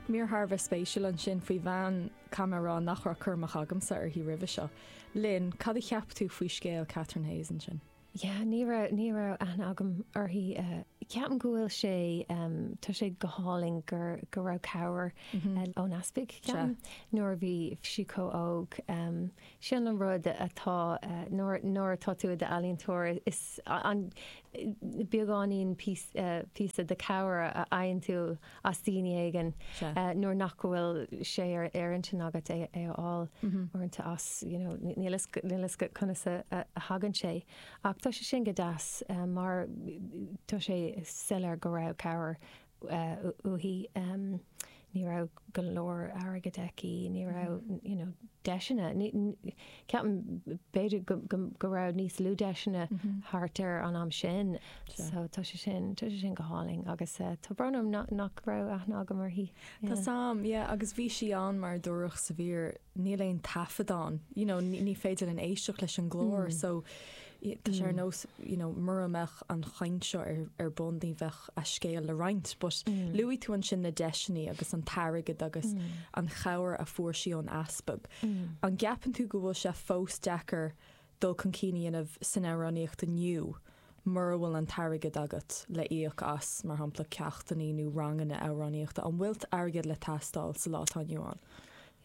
Mír thar a bheith spéisiúil ansin faoi bhean caithfidh mé a rá nach raibh cur amach agamsa uirthi roimhe seo. Lynn, cad a cheap tú faoi scéal Catherine Hayes ansin? Yeah, ní raibh, ní raibh aithne agam uirthi. Ceapaim go bhfuil sé, tá sé go hálainn gur, go raibh cabhair ón easpag, ceapaim, nuair a bhí sí chomh óg. Sin an rud atá, nuair atá tú i d'ealaíontóir, is an beagáinín píosa de chabhair a fhaigheann tú as daoine éigin nuair nach bhfuil sé ar intinn agat é a fháil uaireanta as, you know, níl a fhios agat conas a thagann sé. Ach tá sé sin go deas mar tá sé soiléir go raibh cabhair uaithi, ní raibh go leor airgid aici, ní raibh you know deiseanna, ceapaim b'fhéidir go raibh níos lú deiseanna thart ar an am sin so tá sé sin, tá sé sin go hálainn agus eh tá brón orm nach raibh aithne agam uirthi. Tá a fhios agam, yeah agus bhí sí ann mar a dúradh sa mhír, níl aon taifeadán, you know ní féidir linn éisteacht leis an nglór mm. so Tá sé ar nós you know mura mbeadh an chaint seo ar bun ní bheadh a scéal le roinnt but luaigh tú ansin na deiseanna agus an t-airgead agus an chabhair a fuair sí ón Easpag. An gceapann tú go bhfuil sé fós deacair dul chun cinn a dhéanamh san amhránaíocht inniu mura bhfuil an t-airgead agat le íoc as mar shampla ceachtanna nó ranganna amhránaíochta? An bhfuil airgead le teastáil sa lá atá inniu ann?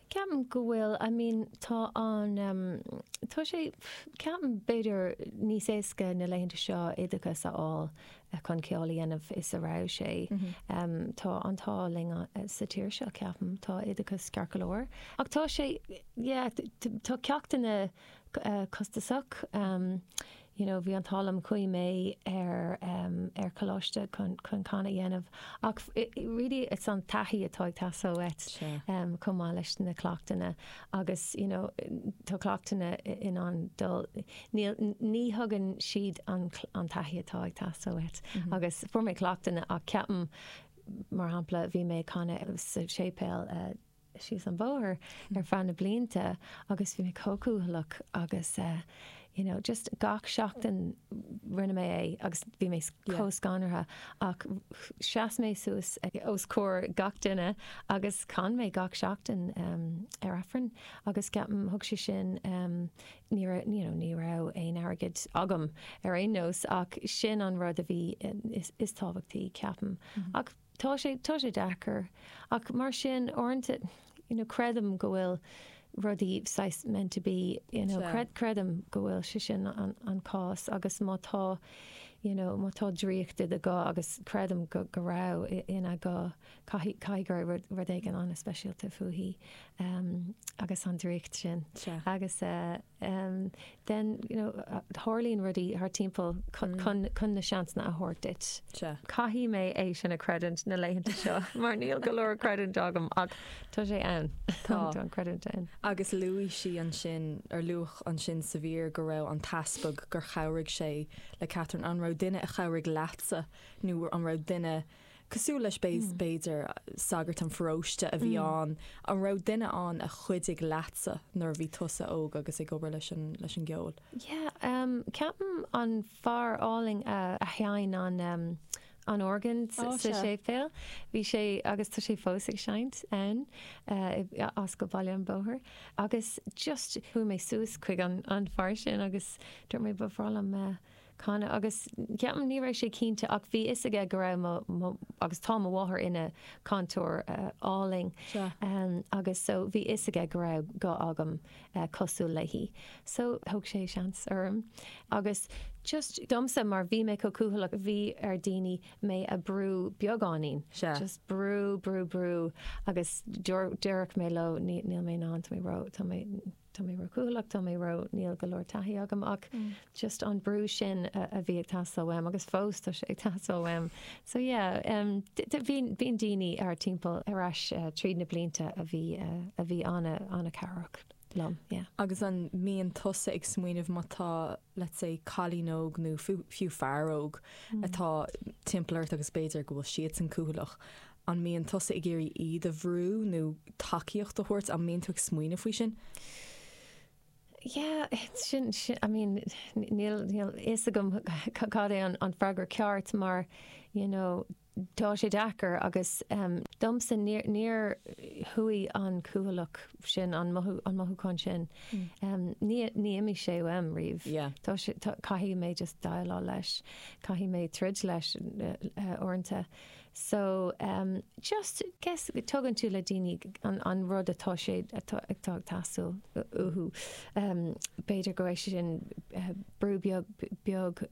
Ceapaim go bhfuil, I mean, tá an, tá sé, ceapaim, b'fhéidir, níos éasca na laethanta seo oideachas a fháil chun ceol a dhéanamh is a raibh sé. Tá an t-ádh linn sa tír seo, ceapaim, tá oideachas ceart go leor. Ach tá sé, yeah, tá ceachtanna costasach. You know, bhí an t-ádh liom chuaigh mé ar ar coláiste chun chun canadh a dhéanamh ach really it's an taithí atá ag teastáil uait chomh maith leis na cleachtanna agus you know tá cleachtanna in ann dul níl ní thugann siad an an taithí atá ag teastáil uait agus fuair mé cleachtanna ach ceapaim mar shampla bhí mé ag canadh sa séipéal síos an bóthar ar feadh na blianta agus bhí mé chomh cúthaileach agus eh you know just gach seachtain rinne mé é agus bhí mé chomh scanraithe ach sheas mé suas os comhair gach duine agus chan mé gach seachtain em ar Aifreann agus ceapaim thug sé sin em ní raibh you know ní raibh aon airgead agam ar aon nós ach sin an rud a bhí is tábhachtaí ceapaim ach Tá sé, tá sé deacair. Ach mar sin, uaireanta, you know, creidim go bhfuil rudaí saghas meant to be, you know, Sea. creidim go bhfuil sé sin an cás agus má tá, you know, má tá draíocht i do ghuth agus creidim go, go raibh i, ina guth, caithfidh, caithfidh go raibh rud, rud éigin an-speisialta fúithi agus an draíocht sin. Sea. Agus eh. then, you know, tarlaíonn rudaí thart timpeall chun na seansanna a thabhairt duit. Sea. Caithfidh mé é sin a chreidiúint na laethanta seo mar níl go leor creidiúint agam ach tá sé ann. Tá an creidiúint ann. Agus luaigh sí ansin, ar luadh ansin sa mhír go raibh an t-easpag gur chabhraigh sé le Catherine. An raibh duine a chabhraigh leatsa nó an raibh duine cosúil leis, b'fhéidir, sagart an pharóiste a bhí ann, an raibh duine ann a chuidigh leatsa nuair a bhí tusa óg agus ag obair leis an, leis an gceol? Yeah, ceapaim an fear álainn a sheinn an, an orgán sa séipéal, bhí sé, agus tá sé fós ag seinnt ann, Ascal Bhaile an Bhóthair, agus just chuaigh mé suas chuig an, an fear sin agus dúirt mé ba bhreá liom a, canadh, Agus ceapaim, ní raibh sé cinnte ach bhí fhios aige go raibh mo, mo, agus tá mo mháthair ina cantóir álainn Sea. em, agus so bhí fhios aige go raibh guth agam eh cosúil léi so thóg sé seans orm agus just domsa mar bhí mé chomh cúthaileach bhí ar daoine mé a brú beagáinín, Sea. just brú, brú, brú agus déar, déarfadh mé leo ní, níl mé in ann, tá mé ró, tá mé. tá mé ró-chúthaileach tá mé ró. níl go leor taithí agam ach just an brú sin a bhí ag teastáil uaim agus fós tá sé ag teastáil uaim. So yeah em bíonn daoine thart timpeall ar ais tríd na blianta a bhí a bhí an-chabhrach liom, yeah. Agus an mbíonn tusa ag smaoineamh má tá let's say cailín óg nó fiú fear óg atá timpeall ort agus b'fhéidir go bhfuil siadsan cúthaileach An mbíonn tusa ag iarraidh iad a bhrú nó tacaíocht a thabhairt? An mbíonn tú ag smaoineamh faoi sin? Yeah, sin, sin, I mean, níl, níl fhios agam cad é an, an freagra ceart mar, you know, tá sé deacair agus, em, domsa níor, níor chuaigh an cúthaileach sin, an mothú, an mothúchán sin, em, ní, ní imigh sé uaim riamh. Yeah. Tá sé, tá, caithfidh mé just déileáil leis. Caithfidh mé troid leis, eh, eh, uaireanta. So just guess tugann tú do dhaoine an rud atá sé atá ag teastáil uathu. B'fhéidir go raibh sé sin brú beag beag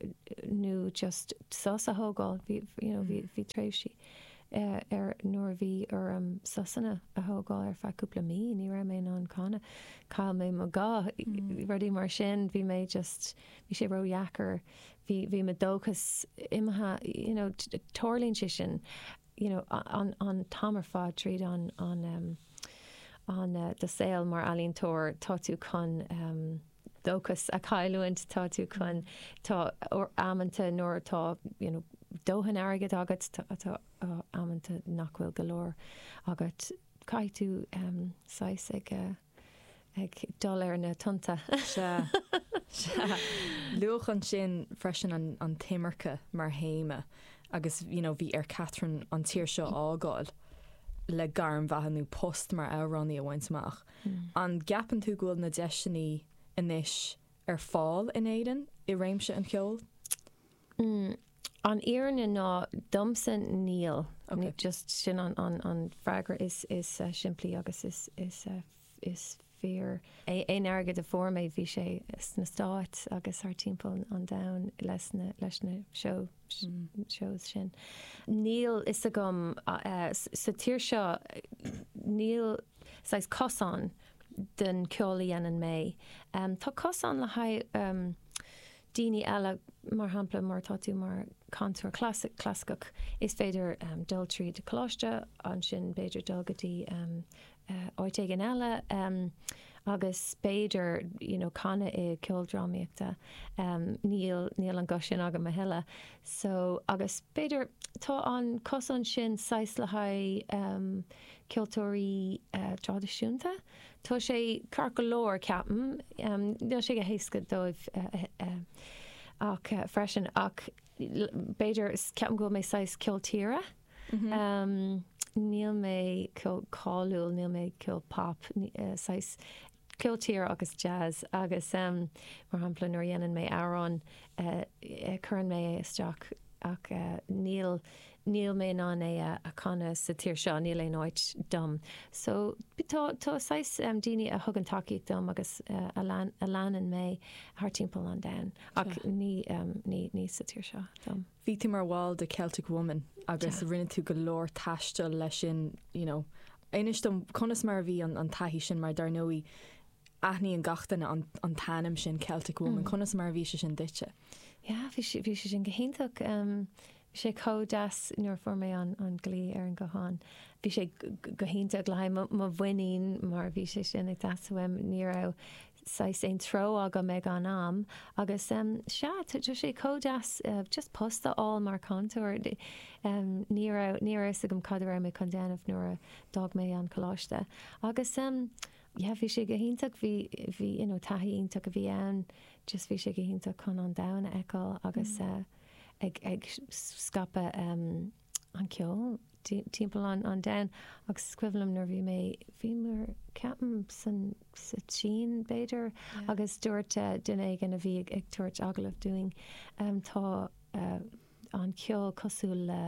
nó just sos a thógáil, bhí you know bhí bhí tréimhsí ar nuair a bhí orm sosanna a thógáil ar feadh cúpla mí ní raibh mé in ann canadh chaill mé mo ghuth rudaí mar sin bhí mé just bhí sé ródheacair bhí, bhí mo dóchas imithe, you know, tarlaíonn sé sin, you know, an, an t-am ar fad tríd an, an, an, do saol mar ealaíontóir, tá tú chun dóchas a chailliúint, tá tú chun, tá amanta nuair atá, you know, dóthain airgid agat, tá, tá amanta nach bhfuil go leor agat, caithfidh tú saghas ag. ag dul ar na tonnta. Sea. Sea. Luadh ansin freisin an, an t-imirce mar théama agus you know, bhí ar Catherine an tír seo a fhágáil le gairm bheatha nó post mar amhránaí a bhaint amach. Mm. An gceapann tú go bhfuil na deiseanna anois ar fáil in Éirinn i réimse an cheoil? Mm, an fhírinne ná domsa níl. Ok. Just sin an, an, an freagra is, is simplí agus is, is, is fíor. Aon airgead a fuair mé bhí sé sna Stáit agus thart timpeall an domhain leis na, leis na shows sin. Níl a fhios agam, sa tír seo níl saghas cosán den ceol a dhéanann mé. Tá cosán le haghaidh, umm, daoine eile. Mar shampla, má tá tú mar chantóir clasaiceach, is féidir dul tríd coláiste, ansin b'fhéidir dul go dtí áit éigin eile agus b'fhéidir you know canadh i gceoldrámaíocht, ah. Níl, níl an guth sin agam a thuilleadh so agus b'fhéidir tá an cosán sin saghas le haghaidh ceoltóirí traidisiúnta. Tá sé ceart go leor, ceapaim. Níl sé go héasca dóibh ach freisin ach b'fhéidir, ceapaim go bhfuil mé saghas ceol tíre. Níl mé chomh cáiliúil, níl mé chomh pop, saghas ceol tíre agus jazz agus mar shampla nuair a dhéanann mé amhrán cuireann mé é isteach ach níl, níl mé in ann é a chanadh sa tír seo, níl aon áit dom. So tá saghas daoine a thugann tacaíocht dom agus a leanann mé thart timpeall an domhain ach ní sa tír seo dom. Bhí tú mar bhall de Celtic Woman agus rinne tú go leor taistil leis sin you know. Inis dom conas mar a bhí an taithí sin mar dar ndóigh aithníonn gach duine an t-ainm sin Celtic Woman, conas mar a bhí sé sin duitse? Yeah, bhí sé sin go hiontach. Bhí sé chomh deas nuair a fuair mé an glao ar an nguthán. Bhí sé go hiontach le haghaidh mo mhuinín mar bhí sé sin ag teastáil uaim. Ní raibh saghas aon treo agam ag an am agus sea, tá sé chomh deas just post a fháil mar cantóir. Ní raibh a fhios agam cad a raibh mé chun déanamh nuair a d'fhág mé an coláiste agus yeah, bhí sé go hiontach, bhí you know taithí iontach a bhí ann, just bhí sé go hiontach chun an domhan a fheiceáil agus. ag scaipeadh an cheoil timpeall an domhain agus is cuimhin liom nuair bhí mé, bhí mé, ceapaim san, sa tSín b'fhéidir agus dúirt duine éigin a bhí ag tabhairt agallamh dúinn tá an ceol cosúil le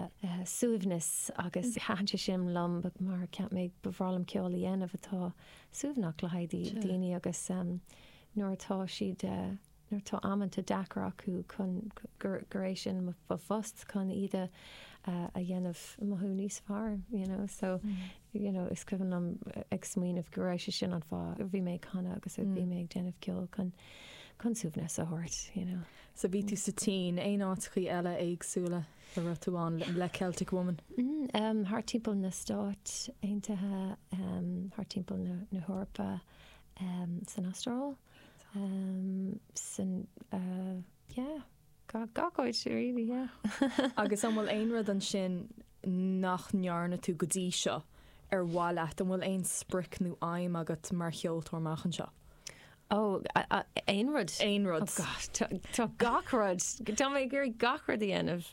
suaimhneas agus thaitin sé sin liom mar cheap mé ba bhreá liom ceol a dhéanamh atá suaimhneach le haghaidh daoine agus nuair atá siad nuair atá amanta deacair acu chun gur é sin mo phost chun iad a dhéanamh mothú níos fearr you know so you know is cuimhin liom ag smaoineamh go raibh sé sin an fáth a bhí mé ag canadh agus a bhí mé ag déanamh ceoil chun chun suaimhneas a thabhairt you know. So bhí tú sa tSín, aon áiteachaí eile éagsúla a raibh tú ann le Celtic Woman? Umm thart timpeall na Stáit Aontaithe, thart timpeall na hEorpa, san Astráil. Sin yeah gach áit really yeah. Agus an bhfuil aon rud ansin nach ndearna tú go dtí seo ar mhaith leat? An bhfuil aon sprioc nó aidhm agat mar cheoltóir amach anseo? Ó aon rud? Aon rud. Oh gosh tá gach rud. Tá mé ag iarraidh gach rud a dhéanamh.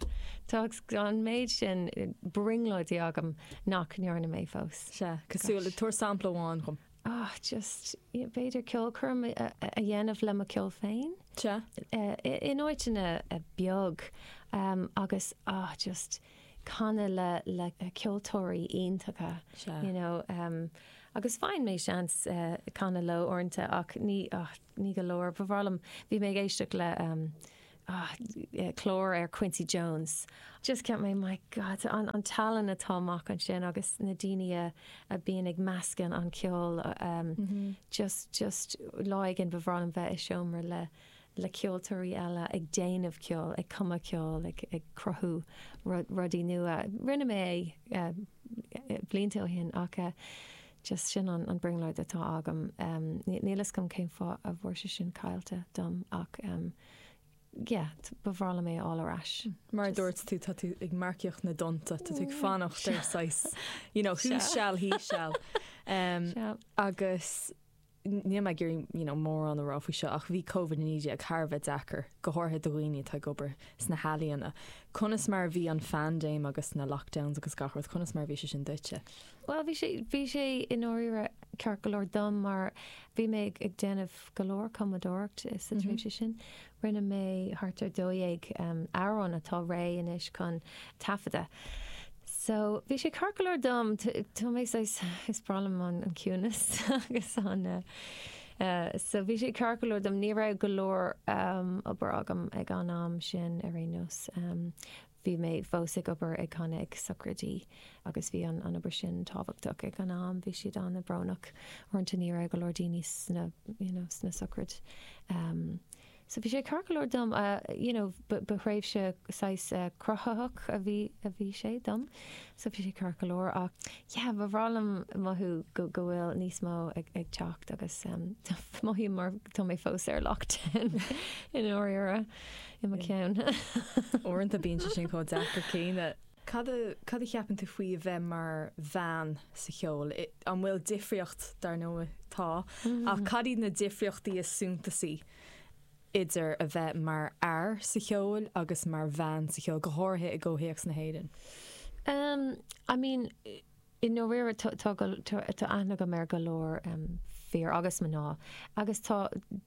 Tá an méid sin brionglóidí agam nach ndearna mé fós. Sea, cosúil le tabhair sampla amháin dhom. Ah just b'fhéidir ceolchoirm a dhéanamh le mo ceol féin. Sea. In áiteanna beag agus ah just canadh le ceoltóirí iontacha. Sea. You know agus faigheann mé seans canadh leo uaireanta ach ní ah ní go leor. Ba bhreá liom, bhí mé ag éisteacht le Ah, clár ar Quincy Jones. Just cheap mé, my God, an tallann atá amach ansin agus na daoine a bíonn ag meascan an ceol. Just, just lá éigin ba bhreá liom bheith i seomra le, le ceoltóirí eile ag déanamh ceoil, ag cumadh ceoil, ag, ag cruthú rudaí nua. Rinne mé é blianta ó shin ach just sin an brionglóid atá agam. Níl fhios agam cén fáth a bhfuair sé sin caillte dom ach. Yeah, ba bhreá liom é a fháil ar ais. Mar a dúirt tú, tá tú ag marcaíocht na dtonnta, tá tú ag fanacht ar saghas, you know, he shall, he shall. Agus níl mé ag iarraidh, you know, mórán a rá faoi seo ach bhí Covid-19 thar a bheith deacair, go háirithe do dhaoine atá ag obair sna healaíona. Conas mar a bhí an phaindéim agus na lockdowns agus gach rud, conas mar a bhí sé sin duitse? Bhuel, bhí sé, bhí sé i ndáiríre ceart go leor dom mar bhí mé ag déanamh go leor cumadóireacht sa tréimhse sin. Rinne mé thart ar dó dhéag amhrán atá réidh anois chun taifeadadh. So, bhí sé ceart go leor dom, tá mé saghas, is breá liom an ciúnas agus an eh, so bhí sé ceart go leor dom, ní raibh go leor obair agam ag an am sin ar aon nós. Bhí mé fós ag obair, ag canadh ag sochraidí agus bhí an obair sin tábhachtach ag an am. Bhí siad ana brónach. Uaireanta ní raibh go leor daoine sna you know sna sochraid ehm so bhí sé ceart go leor dom you know ba ba thréimhse saghas cruthaitheach a bhí a bhí sé dom so bhí sé ceart go leor ach yeah ba bhreá liom mothú go go bhfuil níos mó ag ag teacht agus ehm mothaím mar tá mé fós ar lockdown i ndáiríre. I mo cheann. Uaireanta bíonn sé sin chomh deacair céanna. Cad cad a cheapann tú faoi a bheith mar bhean sa cheol? An bhfuil difríocht? Dar ndóigh tá, ach cad iad na difríochtaí is suntasaí idir a bheith mar fhear sa cheol agus mar bhean sa cheol, go háirithe i gcomhthéacs na hÉireann? I mean, I ndáiríre, tá aithne agam ar go leor fir agus mná agus tá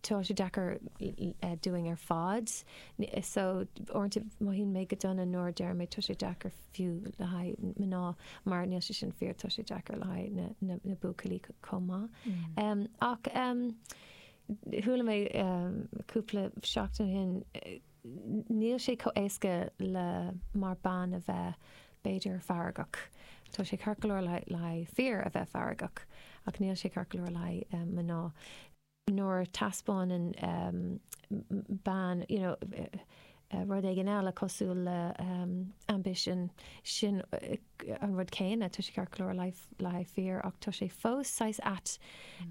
tá sé deacair dúinn ar fad so uaireanta mothaíonn mé go dona nuair a deir mé tá sé deacair fiú le haghaidh mná mar níl sé sin fíor, tá sé deacair le haghaidh na buachaillí chomh maith. Ach chuala mé cúpla seachtain ó shin, Níl sé chomh éasca le mar bean a bheith, b'fhéidir, feargach. Tá sé ceart go leor le haghaidh fir a bheith feargach ach níl sé ceart go leor le haghaidh mná. Nuair a taispeánann bean, you know, rud éigin eile cosúil le ambition, sin an rud céanna, tá sé ceart go leor le haghaidh fir ach tá sé fós saghas ait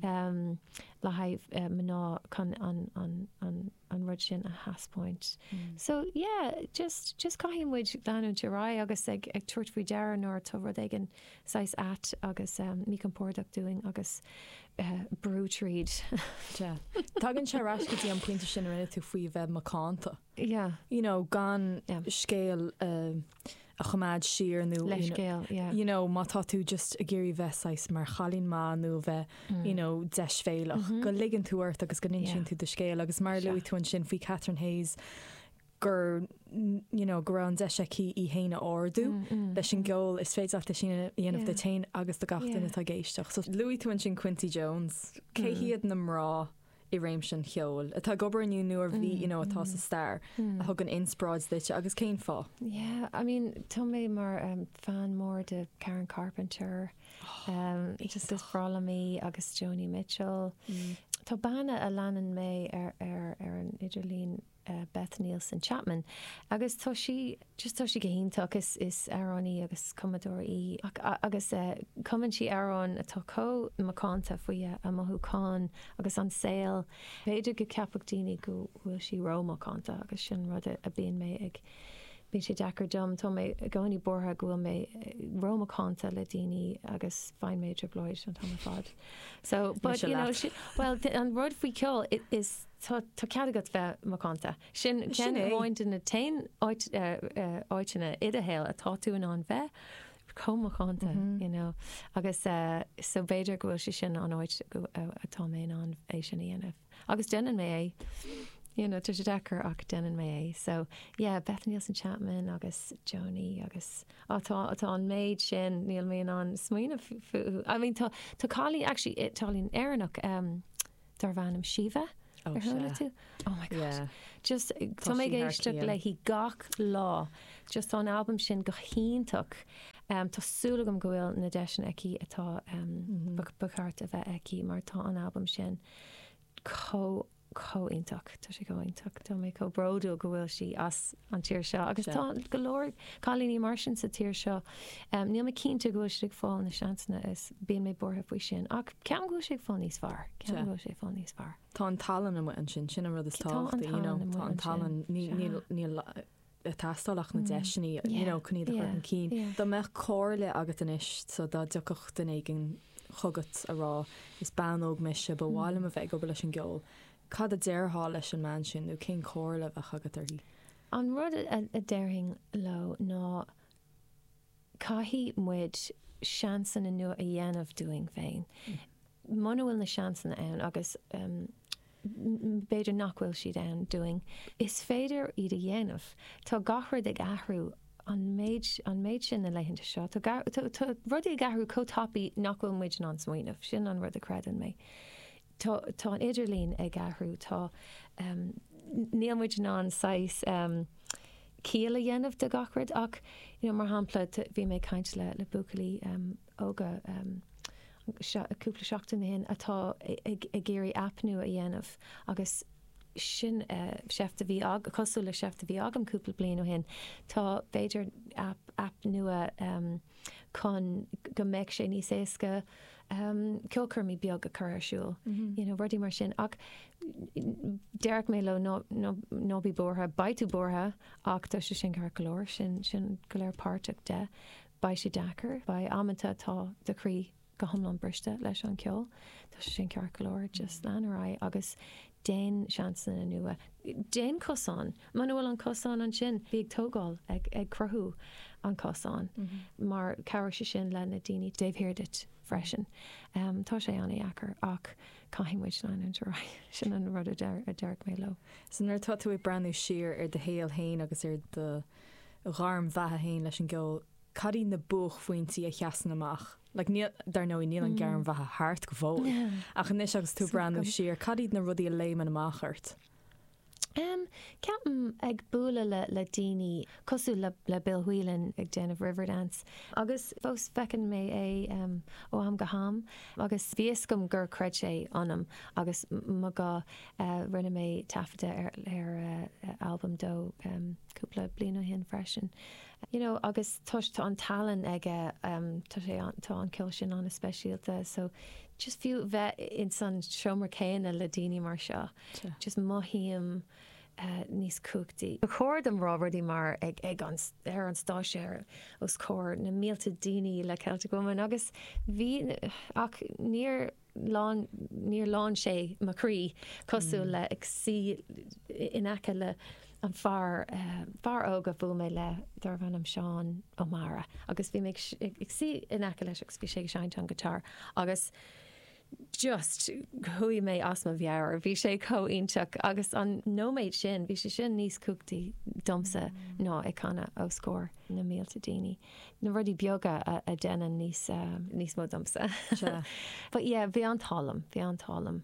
le haghaidh mná chun an, an rud sin a thaispeáint. So, yeah, just, just caithfidh muid leanúint ar aghaidh agus ag, ag tabhairt faoi deara nuair atá rud éigin saghas ait agus eh, míchompordach dúinn agus eh, brú tríd. Sea. Tagann sé ar ais go dtí an pointe sin a rinne tú faoi bheith macánta. Yeah. You know, gan Yeah. scéal eh, a choimeád siar nó leithscéal, yeah. you know, má tá tú just ag iarraidh bheith saghas mar chailín maith nó a bheith, you know, deisbhéalach, go ligeann tú ort agus go n-insíonn Yeah. tú do scéal agus mar a Seo. luaigh tú ansin faoi Catherine Hayes gur, you know, go raibh an deis aici í fhéin a ardú leis an gceol, is féidir leat é sin a dhéanamh Yeah. duit fhéin agus do gach Yeah. duine atá ag éisteacht. So luaigh tú ansin Quincy Jones, cé hiad na mná i réimse an cheoil atá ag obair inniu nó a bhí, you know, atá sa stair a thugann inspioráid duitse agus cén fáth? Yeah, I mean, tá mé mar fan mór de Karen Carpenter, just is breá liom í, agus Joni Mitchell. Tá bean a leanann mé ar an idirlíon Beth Nielsen Chapman agus tá sí just tá sí go hiontach is is amhránaí agus cumadóir í ach agus cumann sí amhráin atá comh macánta faoi a mothúcháin agus an saol b'fhéidir go ceapfadh daoine go bhfuil sí ró macánta agus sin rud a bíonn mé ag bíonn sé deacair dom tá mé i gcónaí buartha go bhfuil mé ró macánta le daoine agus faigheann mé i dtrioblóid an t-am ar fad so but you know she well an rud faoi ceol is Tá cead agat bheith macánta. Sin ceann amháin de na t-aon áiteanna i do shaol atá tú in ann bheith chomh macánta you know agus so b'fhéidir go bhfuil sé sin an áit atá mé in ann é sin a dhéanamh agus déanann mé é you know tá sé deacair ach déanann mé é so yeah Beth Nielsen Chapman agus Joni agus atá atá an méid sin níl mé in ann smaoineamh fúthu I mean tá tá cailín actually álainn Éireannach um Darbh ainm Síomha ar chuala tú? Oh my god. Just tá mé ag éisteacht léi gach lá. Just tá an albam sin go hiontach. Tá súil agam go bhfuil na deiseanna aici atá ba cheart a bheith aici mar tá an albam sin chomh iontach. Tá sé chomh iontach. Tá mé chomh bródúil go bhfuil sí as an tír seo. Agus tá go leor cailíní mar sin sa tír seo. Níl mé cinnte go bhfuil siad ag fáil na seansanna is bíonn mé buartha faoi sin. Ach ceapaim go bhfuil sé ag fáil níos fearr. Ceapaim go bhfuil sé ag fáil níos fearr. Tá an tallann amuigh ansin, sin an rud is tábhachtaí, you know. Tá an tallann amuigh ansin. Tá an tallann, ní- Sea. níl- níl ag teastáil ach na deiseanna, you Yeah, know, chun iad a chur yeah, chun cinn. yeah. Dá mbeadh comhairle agat anois, so dá dtiocfadh duine éigin chugat ag rá, is bean óg mise, ba mhaith liom a bheith ag obair leis an gceol, Cad a déarfá leis an mbean sin nó cén chomhairle a bheadh agat di? An rud a déarfainn leo ná caithfidh muid seansanna nua a dhéanamh dúinn féin. Muna bhfuil na seansanna ann, agus b'fhéidir nach bhfuil siad ann dúinn, is féidir iad a dhéanamh. Tá gach rud ag athrú an méid an méid sin na laethanta seo. Tá rudaí ag athrú chomh tapaidh nach bhfuil muid in ann smaoineamh. Sin an rud a chreideann mé. Tá an t-idirlíon ag athrú. Tá, níl muid in ann saghas ciall a dhéanamh de gach rud ach, you know, mar shampla, bhí mé ag caint le buachaillí óga cúpla seachtain ó shin atá ag iarraidh aip nua a dhéanamh agus sin seift a bhí agam, cosúil le seift a bhí agam cúpla bliain ó shin. Tá, b'fhéidir, aip nua chun go mbeadh sé níos éasca ceolchoirmí beag a chur ar siúl, you know, rudaí mar sin. Ach déarfadh mé leo ná, ná, ná bí buartha. Beidh tú buartha ach tá sé sin ceart go leor. Sin, sin go léir páirteach de. Beidh sé deacair. Beidh amanta atá do chroí go hiomlán briste leis an gceol. Tá sé sin ceart go leor. Just lean ar aghaidh agus déan seansanna nua. Déan cosán. Muna bhfuil an cosán ansin, bí ag tógáil, ag cruthú an cosáin, mar cabhróidh sé sin leis na daoine taobh thiar duit freisin. Tá sé an-dheacair ach caithfidh muid leanúint ar aghaidh, sin an rud a déarfadh mé leo. So nuair atá tú ag breathnú siar ar do shaol féin agus ar do ghairm bheatha féin leis an gceol, cad iad na buachphointí a sheasann amach? Like níl, dar ndóigh, níl an ghairm bheatha thart go fóill ach anois agus tú ag breathnú siar, cad iad na rudaí a léimeann amach ort? Em, ceapaim, ag bualadh le, le daoine cosúil le, le Bill Whelan ag déanamh Riverdance agus fós feiceann mé é, em, ó am go ham agus bhí fhios agam gur chreid sé ionam agus ma go, eh, rinne mé taifeadadh ar, ar, eh, albam dó, em, cúpla bliain ó shin freisin, you know, agus toisc tá an tallann aige, em, tá sé an, tá an ceol sin ana speisialta so just fiú bheith insan seomra céanna le daoine mar seo. just mothaím níos cumhachtaí. Ba chóir dom rá rudaí mar ag ar an stáitse os comhair na mílte daoine le Celtic Woman agus bhí ach níor líon níor líon sé mo chroí cosúil le ag suí in aice le an fear fear óg a bhuail mé le darbh ainm Seán Ó Meára agus bhí mé ag suí in aice leis agus bhí sé ag seinnt an guitar agus just, chuaigh mé as mo mheabhair, bhí sé chomh iontach agus an nóiméad sin, bhí sé sin níos cumhachtaí domsa ná ag canadh os comhair na mílte daoine, na rudaí beaga a deineann níos, níos mó domsa. Sea. But yeah, bhí an t-ádh liom, bhí an t-ádh liom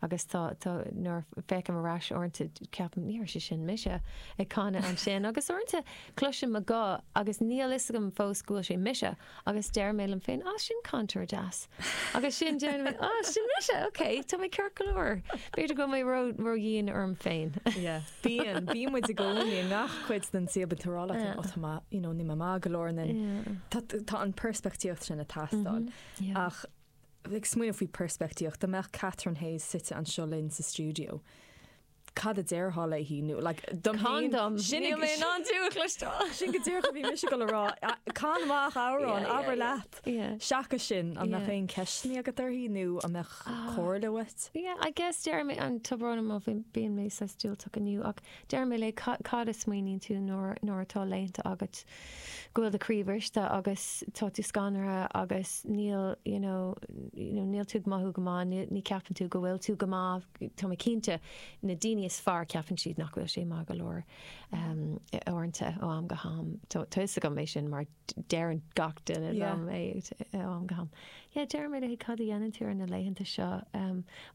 agus tá, tá, nuair a féachaim ar ais uaireanta ceapaim ní raibh sé sin mise ag canadh ansin agus uaireanta cloisim mo ghuth agus níl 'fhios agam fós go bhfuil sé mise Agus deir mé liom féin, 'Á, sin cainteoir deas. Agus sin deir mé, 'Á, sin mise, ok, tá mé ceart go leor. B'fhéidir go bhfuil mé ró-dhian orm féin. Ie, bíonn, bíonn muid i gcónaí i ngach cuid den saol, bíonn tú ag rá leat féin, 'Ó, tá mé, you know, níl mé maith go leor in. Tá, tá an peirspictíocht sin ag teastáil. Ach, ag smaoineamh faoi peirspictíocht, dá mbeadh Catherine Hayes suite anseo linn sa stiúideo, cad a déarfá léi sin go díreach a bhí mise chun a rá can amach amhrán, abair leat seachas sin an mbeadh aon ceisteanna agat uirthi nó an mbeadh ah. comhairle uait? Yeah I guess deir mé léi, tá brón orm, bíonn mé saghas diúltach inniu ach deir mé léi cad a smaoiníonn tú nuair atá laethanta agat go bhfuil do chroí briste agus tá tú scanraithe agus níl you know níl tú ag mothú go maith ní ceapann tú go bhfuil tú go maith Tá mé cinnte, na daoine is fearr, ceapann siad nach bhfuil sé maith go leor. Uaireanta, ó am go ham, tá fhios agam é sin mar deireann gach duine liom é ó am go ham. Yeah, deirim léi cad a dhéanann tú ar na laethanta seo.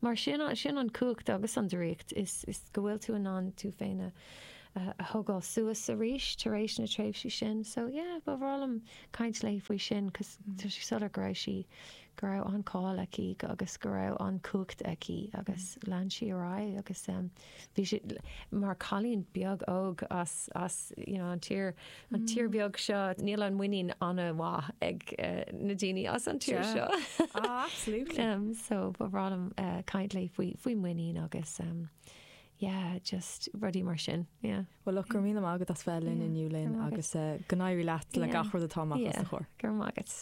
Mar sin, sin an cumhacht agus an draíocht, is go bhfuil tú in ann tú féin a thógáil suas arís tar éis na tréimhsí sin. So yeah, ba bhreá liom caint léi faoi sin 'cause tá sé soiléir go raibh sí go raibh an cáil aici agus go raibh an chumhacht aici agus lean sí ar aghaidh agus bhí sí mar cailín beag óg as as you know an tír an tír beag seo níl an muinín an-mhaith ag na daoine as an tír seo absolutely so ba bhreá liom caint léi faoi faoi muinín agus yeah just rudaí mar sin yeah. Well look go raibh míle maith agat as bheith linn inniu Lynn agus go n-éirí leat le gach rud atá amach os do chomhair. Go raibh maith agat.